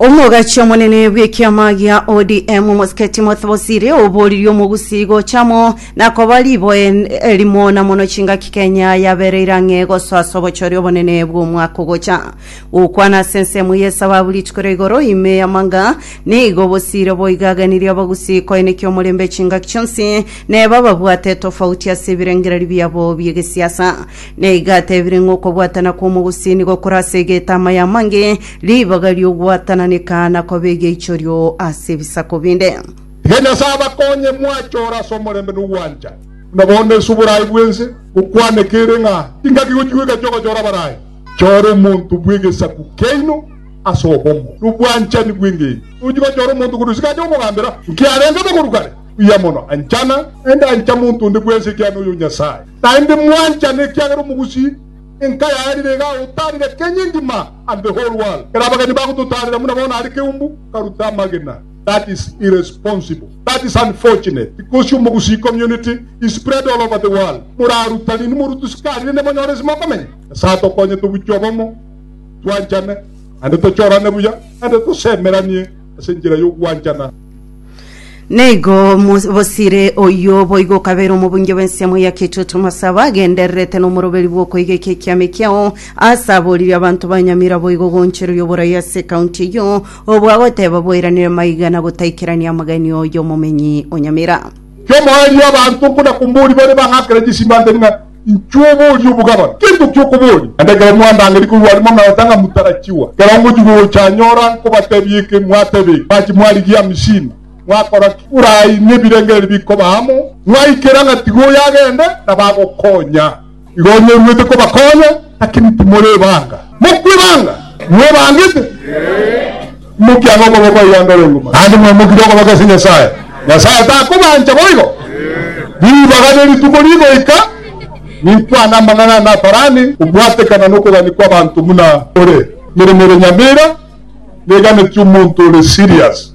omogachi omonene bw'ekiama gia odm omosike timothy bosire oboririe omogusii gochamo na koba riboe n- erimo na mono chingaki kenya yabereire ang'e gosoa ase obochori obonene bw'omwaka ogocha gokwana ase ensemo y'esababu rituko ria igoro ime y'amanga nigo obosire boigagenirie abagusii koenekia omorembe chingaki chionsi neba babwate etofauti ase ebirengererio biabo bi'egesiasa Na iga atebire ng'a okobwatana kw'omogusini gokore ase egetama y'amange, ribaga ri'ogwatananeka, na kobe egeichorio ase ebisaku binde. Iga Nyasae abakonye mwachore ase omorembe na ogwancha, buna bono ase oboraai bw'ense gokwaneka ere ng'a ingaki gochigwa egati ogochora abarai. Chora omonto bw'egesaku kiaino ase obomo na obwanchani bw'engencho. Tochi gochora omonto korwa isiko aye omogambera, nki arenge bogoru kare buya mono. Anchana, naende ancha monto onde bwense ekiagera noyo Nyasae. Naende mwanchane, ekiagera omogusii enka yarire iga agotaarire Kenya engima and the whole world. Ere abageni bagototaarera buna bono are keumbu karuta amagena. That is irresponsible. That is unfortunate because omogusii community is spread all over the world. Moraruta rini morutu sikarire ne monyore ase mokomenya? Nyasae atokonye tobuchwe obomo, twanchane, naende tochorane buya, naende tosemeranie ase enchera y'ogwanchana. Naigo Mos- bosire oyio boigo okabeire omobunge bw'ensemo ya kitutu masaba agendererete nomoroberi bw'okoiga eke ekiama ekiao ase aboririe abanto ba Nyamira boigo ogoonchereria oborai ase ekaunti eyio obwo agoteba bwairanire maiga na gotaikerania amagani oyomomenyi o Nyamira. Kiomoerio abanto nkona komoria bare bang'akera chisimba ntari ng'a Inchuo oborie obogabana, teri gokia okoboria. Naende ekero mwandangeria korwa are mometa ng'a motarachiwa, ekero ngochia gocha anyora nkobatebia eke, mwateba eke, mwachi mwarigia amisini, mwakora ki? Borai nebirengererio bikoba amo, mwaikera ng'a tiga oyo agende, na bagokonya. Igo onye oruete kobakonya, lakini timore ebanga. Mokwe ebanga? Mwebangete? Mokiage okoba omoyangore iguma, naende mwamokire okoba gose Nyasae. Nyasae takobancha boigo. Ribaga ne rituko rigoika, ninkwane amang'ana ane atarani kobwatekana nokogania kwabanto buna ore. Emeremo ere nyamera neganetie omonto ore serious,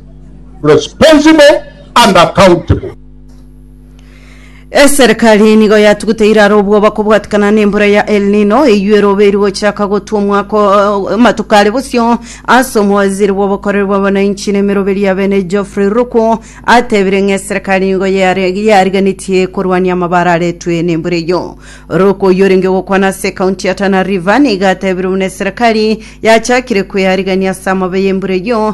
responsible and accountable. Eserikari nigo yatugute iraro obwoba kobwatikana nembura ya El Nino eywo erobe eri gochaka gotwa omwaka o- amatuko are bosio ase omowaziri bw'obokoreri bwa abananchi na emeroberi ya bene Geoffrey Ruku atebire ng'a eserikari nigo yare- yarigenetie korwania amabara aretwe nembura eyio Ruku oyio orenge gokwana ase ekaunti ya Tana River nigo atebire buna eserikari yachakire kwearigania ase amabe y'embura eyio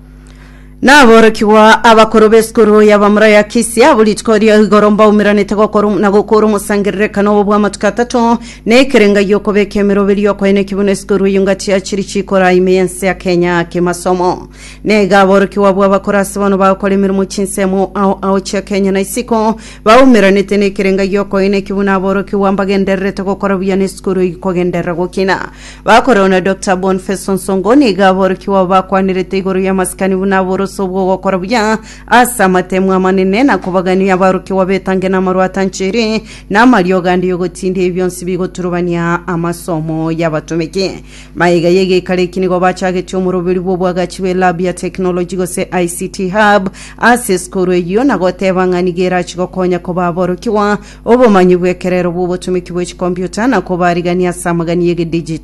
Naborokigwa abakoro b'esukuru y'abamura ya Kisia abo rituko ria igoro mbaumeranete gokora na gokora omosangererekano obo bw'amatuko atato na ekerenga gi'okobeka emerobe ri'okoena ekibuno esukuru eyio ngati ya chiri chikora ime y'ense ya Kenya kimasomo. Nega aborokigwa abwo abakora ase bono bagokora emeremo chinsemo ao ao chia Kenya na isiko baumeranete na ekerenga gi'okoena ekibuno aborokigwa mbagendererete gokora buya na esukuru eyio kogenderera gokina Bakorwa na Dr. Bonface Nsongo nigo aborokigwa abo bakwanirete igoro y'amasikani buna aborose obw'ogokora buya ase amatemu amanene na kobagania abarokigwa betange namarwa atanchiri na amariogo ande y'ogotinda ebi bionsi bigoturubania amasomo y'abatomeki. Maiga y'egeikaro eki nigo bachagetie omoroberi bw'obwagachi bwe lab ya technology gose ICT hub ase esukuru eyio na goteba ng'a nigo erachi gokonya koba aborokigwa obomanyi bw'ekerero bw'obotomeki bwe chikompiuta na kobarigania ase amagani y'egedigital.